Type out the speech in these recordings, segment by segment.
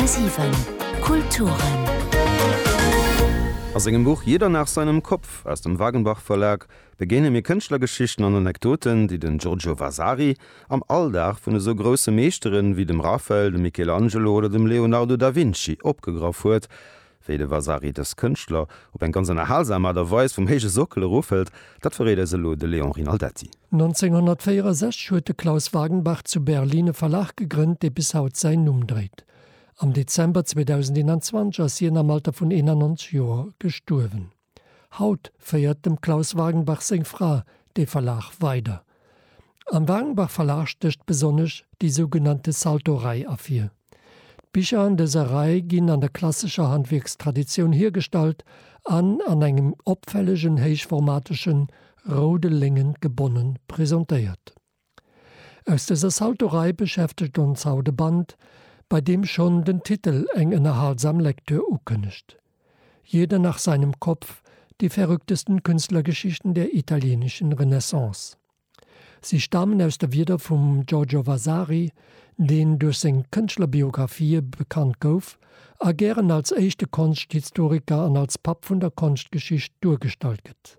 10,7 Kulturen. A sengem Buch Jeder nach seinem Kopf aus dem Wagenbach Verlag begéine mir Kënschtlergeschichten an Anekdoten, déi den Giorgio Vasari am Alldag vun esou grousse Meeschtere wéi dem Raphael, dem Michelangelo oder dem Leonardo da Vinci opgegraff huet, Wéi de Vasari dës Kënschtler op eng ganz ënnerhalsam Aart a Weis vum héije Sockel erofhëlt, dat verréit eis elo de Léon Rinaldetti. 1964 huet de Klaus Wagenbach zu Berlin e Verlag gegrënnt, dee bis haut säin Numm dréit. Am Dezember 2021 ass hien am Alter vun 91 Joer gestuerwen. Haut féiert dem Klaus Wagenbach seng Fra dee Verlag weider. Am Wagenbach Verlag stécht besonnesch déi sougenannte Salto-Rei ervir. D'Bicher an dëser Rei ginn an der klassescher Handwierkstraditioun hiergestallt an an engem opfällegen héichformateschen roude Léngen gebonne presentéiert. Aus dëser Saltorei beschäftegt ons haut e Band, bei deem schonn den Titel eng ënnerhalsam Lektür ukënnegt, Jeder nach seinem Kopf, Die verrücktesten Künstlergeschichten der italienischen Renaissance. Si stamen aus de Wierder vum Giorgio Vasari, deen duerch seng Kënschtlerbiografië bekannt gouf a gären als éischte Konschthistoriker an als Papp vun der Konschtgeschicht duergestallt gëtt.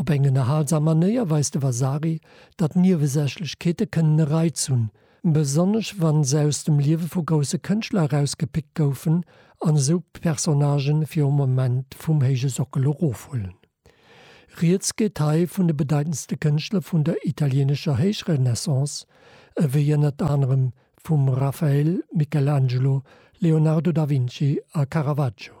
Op eng ënnerhalsam Manéier weist de Vasari, datt Niewesächlechkeete kënnen e Reiz hunn, besonnesch wa se aus dem Liewe vu grousse Kënschtler erausgepickt goufen an esou d'Personnagë fir e Moment vum héije Sockel erofhuelen. Rieds geet hei vun de bedeitendste Kënschtler vun der italieenescher Héichrenaissance, ewéi ënnert anerem vum Raphael, Michelangelo, Leonardo da Vinci a Caravaggio.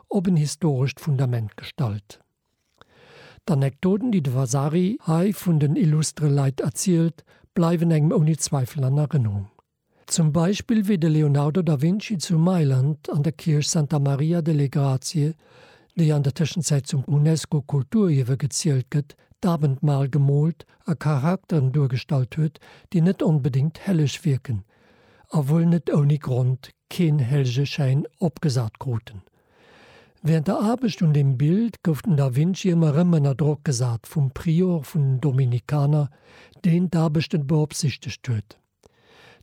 op en historescht Fundament gestallt. D'Anekdoten, déi de Vasari hei vun den illustre Leit erzielt, bleiwen engem ouni Zweifel an Erënnerung. Zum Beispill wéi de Leonardo da Vinci zu Mailand an der Kierch Santa Maria delle Grazie, déi an der Tëschenzäit zum UNESCO-Kulturierwe gezielt gëtt, d'Abendmahl gemoolt a Charakteren duergestallt huet, déi net onbedéngt helleg wierken, a wuel net ouni Grond keen Helljeschäin opgesat kruten. Während der Aarbecht un dem Bild gouf den da Vinci ëmmer erëm ënner Drock gesat vum Prior vun den Dominikaner, deen d'Aarbechten beopsichtegt huet.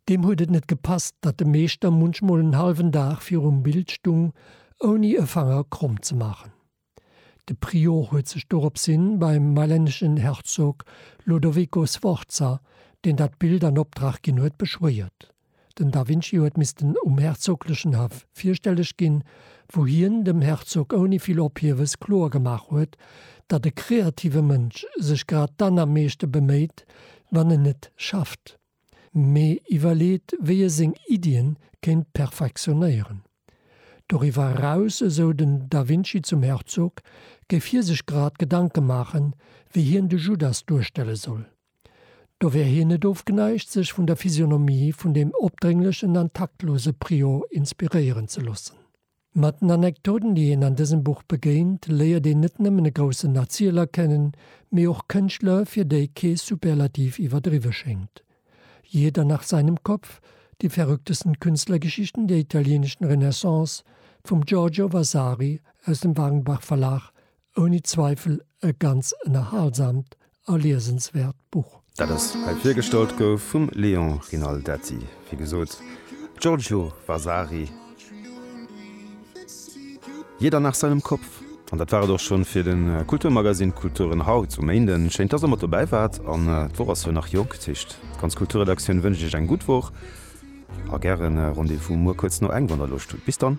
Deem huet et net gepasst, datt de Meeschter munchmol en hallwen Dag virum Bild stung, ouni e Fanger kromm ze maachen. De Prior huet sech doropshin beim mailänneschen Herzog Lodovico Sforza, deen dat Bild an Optrag ginn huet, beschwéiert. Den da Vinci huet missten um herzoglechen Haff virstelleg ginn, wou hien dem Herzog ouni vill Ophiewes kloer gemaach huet, datt e kreative Mënsch sech grad dann am meeschte beméit, wann en et schafft. mee iwwerleet, wéi e seng Iddie kéint perfektionéieren. Doriwwer eraus, esou den da Vinci zum Herzog, géif hie sech grad Gedanke maachen, wéi hien de Judas duerstelle soll. Do wär hien net ofgeneigt, sech vun der Physionomie vun deem opdrénglechen an taktlose Prior inspiréieren ze loossen. Mat den Anekdoten, déi een an dësem Buch begéint, léiert een net nëmmen e groussen Erzieler kennen, mee och Kënschtler, fir déi kee Superlativ iwwerdriwwe schéngt. Jeder nach seinem Kopf, Die verrücktesten Künstlergeschichten der italienischen Renaissance vum Giorgio Vasari aus dem Wagenbach-Verlag ouni Zweifel e ganz ënnerhalsamt a liesenswäert Buch. Dat ass hei virgestallt gouf vum Léon Rinaldetti, wéi gesot, Giorgio Vasari, Jeder nach seinem Kopf. An dat war et och schonn fir de Kulturmagazine Kulturen haut um Méinden. Schéin, dass der mat dobäi waart. An d'Woch ass jo nach jonk, dat heescht, d'ganz Kulturredaktioun wënscht Iech eng gutt Woch a gären Rendez-vous muer kuerz no eng, wann der Loscht hutt. Bis dann!